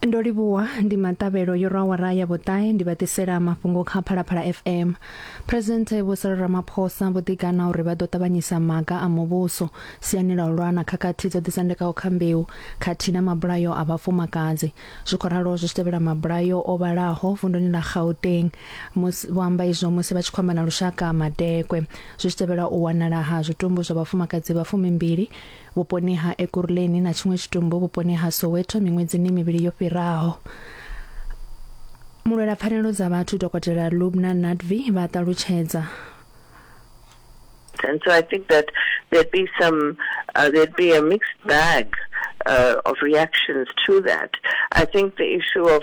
ndo livhuwa ndi maṱavhelo yo rwa awara ya vhuṱahe ndi vha ḓisela mafhungo kha phalaphala fm presidente vho sala ramaphosa vho ḓigana uri vha ḓo ṱavhanyisa maga a muvhuso siani ḽa u lwa na khakhathi dzo ḓisendekaho kha mbeu khathihi na mabulayo a vhafumakadzi zwi khou ralo zwi tshi tevhela mabulayo o vhalaho vunduni ḽa gauteng musi vho amba izwo musi vha tshi khou amba na lushaka madekwe zwi tshi tevhela u wanala ha zwitumbu zwa vhafumakadzi vha fumimbili vhuponi ha Ekurhuleni na tshiṅwe tshitumbu vhuponi ha Soweto miṅwedzini mivhili yo fhiraho. Mulwela pfanelo dza vhathu Dokotela Lubna Nadvi vha ṱalutshedza. And so I think that there'd be some, uh, there'd be a mixed bag uh, of reactions to that. I think the issue of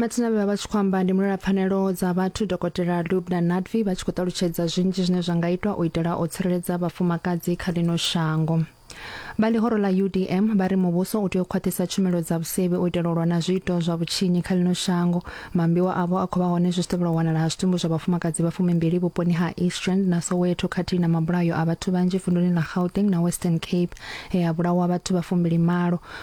matsina vhe vha vha tshi khou amba ndi mulwela pfanelo dza vhathu dokotela lubna nadvi vha tshi khou ṱalutshedza zwinzhi zwine zwa nga itwa u itela u tsireledza vhafumakadzi kha ḽino shango vha ḽihoro ḽa udm vha ri muvhuso u tea u khwaṱhisa tshumelo dza vhusevhi u itela u lwa na zwiito zwa vhutshinyi kha ḽino shango mambiwa avho a khou vha hone zwi tshi tevhela u wanala ha zwitumbu zwa vhafumakadzi vha fumimbili vhuponi ha eastrand na soweto khathihi na mabulayo a vhathu vhanzhi vunduni ḽa gauteng na western cape he ha vhulawa vhathu vha fumbili malo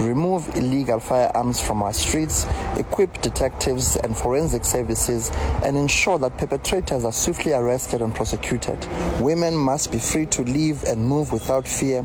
remove illegal firearms from our streets, equip detectives and forensic services, and ensure that perpetrators are swiftly arrested and prosecuted. Women must be free to live and move without fear.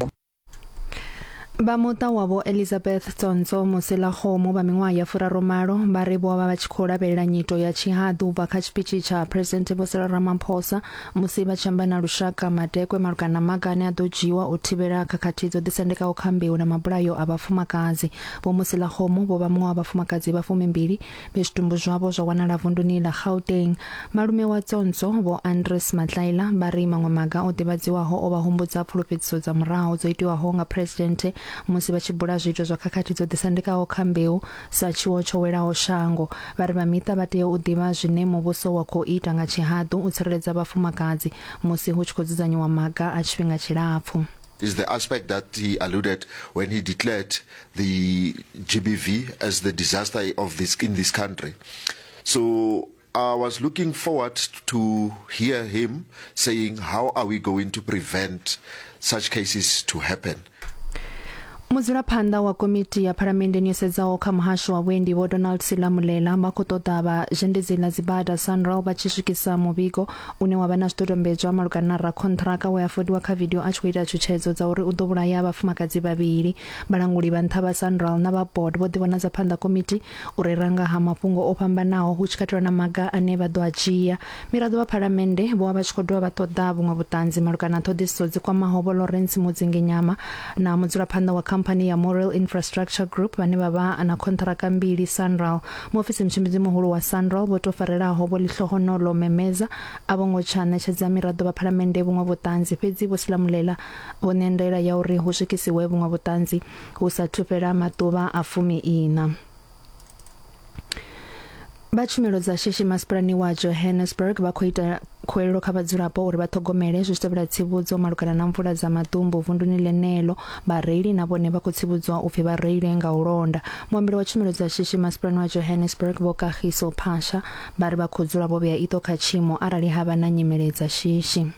vha muṱa wavho elizabeth tsonso muselagomo vha miṅwaha ya furaromalo vha ri vho vha vha tshi khou lavhelela nyito ya tshihaḓu u bva kha tshipitshi tsha president vho sela ramaphosa Musi vha tshi amba na lushaka madekwe malugana na maga ane a ḓo dzhiiwa u thivhela khakhathi dzo ḓisendekaho kha mbeu na mabulayo a vhafumakadzi, Vho Mosilakgomo vho vha muṅwe wa vhafumakadzi vha fumimbili vhe zwitumbu zwavho zwa wanala vunduni ḽa Gauteng. Malume wa Tsonso, Vho Andries Matlaila, vha ri maṅwe maga o ḓivhadziwaho o vha humbudza pfulufhedziso dza murahu dzo itiwaho nga Phresidennde musi vha tshi bula zwiito zwa khakhathi dzo ḓisendekaho kha mbeu Sa tshiwo tsho welaho shango, vha ri vha miṱa vha tea u ḓivha zwine muvhuso wa khou ita nga tshihaḓu u tsireledza vhafumakadzi musi hu tshi khou dzudzanyiwa maga a tshifhinga tshilapfu. is the aspect that he alluded when he declared the GBV as the disaster of this in this country. So I was looking forward to hear him saying how are we going to prevent such cases to happen. mudzulaphanḓa wa komiti ya phalamenndeni yo sedzaho kha muhasho wa vhuendi vho donald silamulela vha khou ṱoḓa vha zhendedzi ḽa dzibada sanral vha tshi swikisa muvhigo une wa vha na zwidodombedzwa malugana na rakhonṱhiraka we a fodiwa kha vidio a tshi khou ita tshutshedzo dza uri u ḓo vhulaya vhafumakadzi vhavhili vhalanguli vha nṱha vha sanral na vha board vho ḓivhonadza phanḓa komiti u rera nga ha mafhungo o fhambanaho hu tshi katelwa na maga ane vha ḓo a dzhia. Miraḓo vha Phalamennde vho vha vha tshi khou dovha vha ṱoḓa vhuṅwe vhuṱanzi malugana na ṱhoḓisiso dzi kwamaho Vho Lawrence Mudzinginyama na mudzulaphanḓa wa khamphani ya Morrell Infrastructure Group vhane vha vha na khonṱhiraka mbili Sanral. Muofisi mutshimbidzi muhulu wa Sanral Vho Tofarelaho Vho Lihlohonolo Memeza a vho ngo tsha ṋetshedza miraḓo vha Phalamennde vhuṅwe vhuṱanzi fhedzi Vho Silamulela vho ṋea ndaela ya uri hu swikisiwe vhuṅwe vhuṱanzi Hu sa athu fhela maḓuvha a fumi-iṋa, vha tshumelo dza shishi masipalani wa Johannesburg vha khou ita khuwelelo kha vhadzulapo uri vha ṱhogomele zwi tshi tevhela tsivhudzo malugana na mvula dza maḓumbu vunduni ḽeneḽo vhareili na vhone vha khou tsivhudzwa upfi vha reile nga u londa muambeli wa tshumelo dza shishi masipalani wa Johannesburg vho Kagiso Phasha vha ri vha khou dzula vho vhea iṱo kha tshiimo arali ha vha na nyimele dza shishi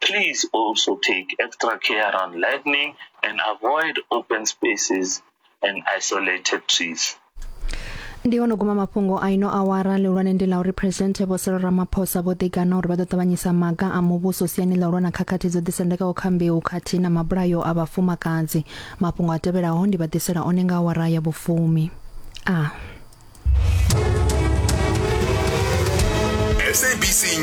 Please also take extra care around lightning and avoid open spaces and isolated trees. ndi ono guma mafhungo a ino awara lihulwane ndi la uri presidente vho Cyril Ramaphosa vho ḓigana uri vha ḓo ṱavhanyisa maga a muvhuso siani ḽa u lwa na khakhathi dzo ḓisendekaho kha mbeu khathihi na mabulayo a vhafumakadzi mafhungo a tevhelaho ndi vha ḓisela one nga awara ya vhufumi a SABC News.